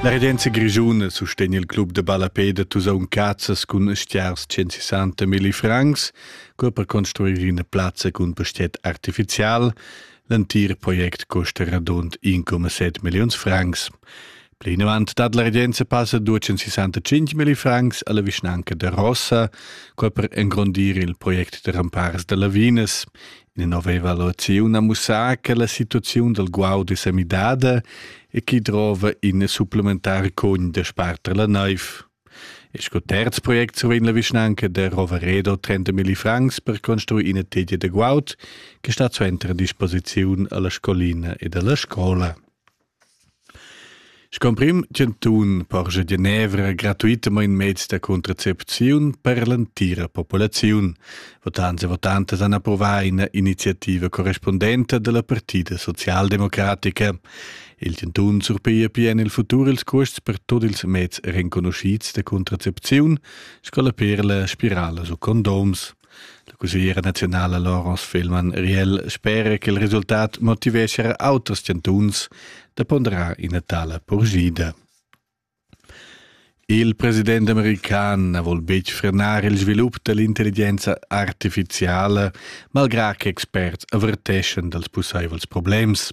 La regenza grischuna sustegna il club da ballapè da Tusaun Cazzas cun stiars 160 milli francs, cur per construir ina plazza cun pastiet artificial. L'entir project costa radund 1,7 milliuns francs. Plinavant dat la regenza passa 265 milli francs alla vischnanca de Rossa, qua per engrondir il project de rampars de Lavinas. In aveva l'oziun a mussar che la situaziun del guaud è semidada e chi drova in supplementar cogn de sparter la naiv. E sco terz project survegn la vischnanca de Roveredo 30 milli francs per construir ina tegia de guaud che sta suenter a disposiziun alla scolina ed alla scola. Sco emprim chantun porscha Genevra gratuitamain meds da contracepziun per l'entira populaziun. Votants e votantas han approvà ina iniziativa correspundenta da la Partida socialdemocratica. Il chantun surpiglia pia en il futur ils custs per tut ils meds renconuschids da contracepziun sco la perla, spirala u condoms. La cussegliera naziunala Laurence Fehlmann Riel spera che il resultat motiveschia auters chantuns da ponderar ina tala purschida. Il president american na vul betg frenar il svilup dall'intelligenza artificiala, malgrà che experts averteschan dals pussaivels problems.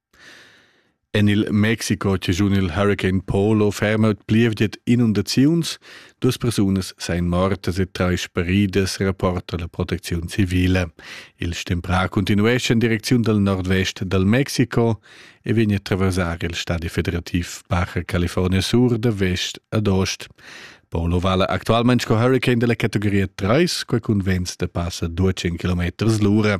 En il Mexico chaschun il Hurricane Polo ferma plievgiet inundaziuns, duas persunas seien mortas e trais speridas, rapporta la protecziun civile. Il stemprà continuesce in direcziun dal nordvest dal Mexico e vegn a attraversar il stadi federativ Baja California Sur da vest ad ost. Polo vala actualmente sco hurricane della categoria 3, quai cun vents da passa 200 km l'ora.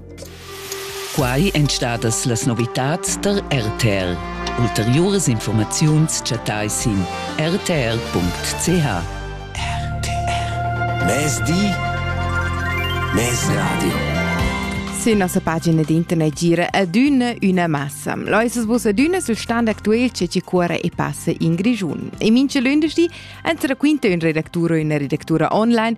Quai èn stadas las novitads tar RTR. Ulteriuras informaziuns chattai sin rtr.ch. RTR. Mezdi. Mezradio. Sün nossa pagina d'internet gira adüna üna massa. Loisas bus adüna sul stand actuel che ci cuora e passa in Grigiun. E mincha lündeschdi, entre quinta ün redactura e üna redactura online,